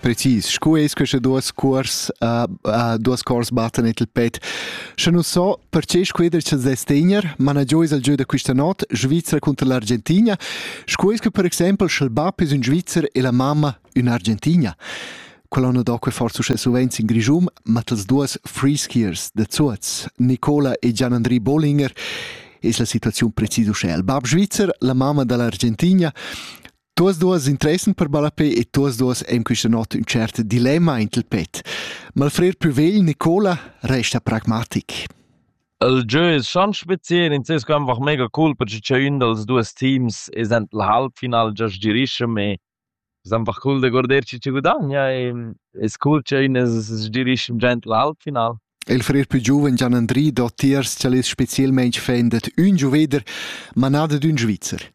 precis scu es queste duos cuors uh, uh, duos cuors battan et il pet sche nu so perche squeder cha Sestegner managio es al giö da quista not Svizzera contro l'Argentina scu es che per exempel sch'el bap es un Svizzer e la mamma ün'Argentina quella no do que forse uschè suvenz in Grisum, ma tals duos free skiers da Zuoz, Nicola e Gian-Andri Bollinger, es la situaziun precis uschè. Il bab svizzer, la mamma da l'Argentina, Tuos duos interessan per ballapè e tuos duos ein quista not ün cert dilemma int il pet. Ma il frer plü vegl, Nicola, resta pragmatic. El jeu es schon speziell, in ses einfach mega cool, perché c'è ün dals duos teams es ent il halbfinale just girischem e es einfach cool da guardar chi ci gudagna e es cool c'è ün es girischem già ent il halbfinale. Il frer più giuven Gian-Andri do tiers ch'el es spezielmaing fan dad ün giuveder, ma na dad ün Svizzer.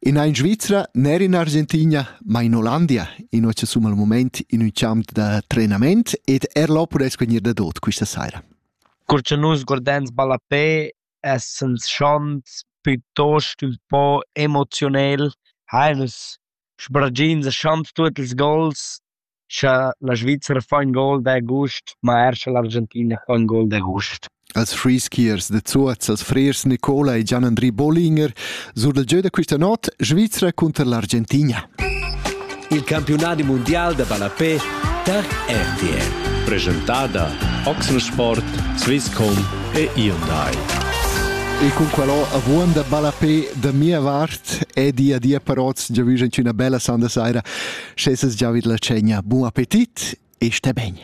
In ein Svizra, ner in Argentina, ma in Ollandia, in occa sum al moment in un champ da trenament ed er l'opera es vegnir da dot questa saira. Cur cha nus guardans ballapè essens schont piuttost ün po emozionel, hai nus sbragins e schont tuot ils gols Scha la Svizra fa ün gol d'agust, ma er scha l'Argentina fa ün gol d'agust. Als frischiers da Zuoz, als frers Nicola e Gian-Andri Bollinger sur dal gieu da questa not Svizra cunter l'Argentina. Il campiunadi mundial da ballapè tar RTL. Presentada Oxensport, Swisscom e Hyundai. E cun quello avuon da ballapè da mia vart e dia dia parots giavüsch in üna bella sanda saira. Sche ses giavid la tschegna, bun appetit e sté ben!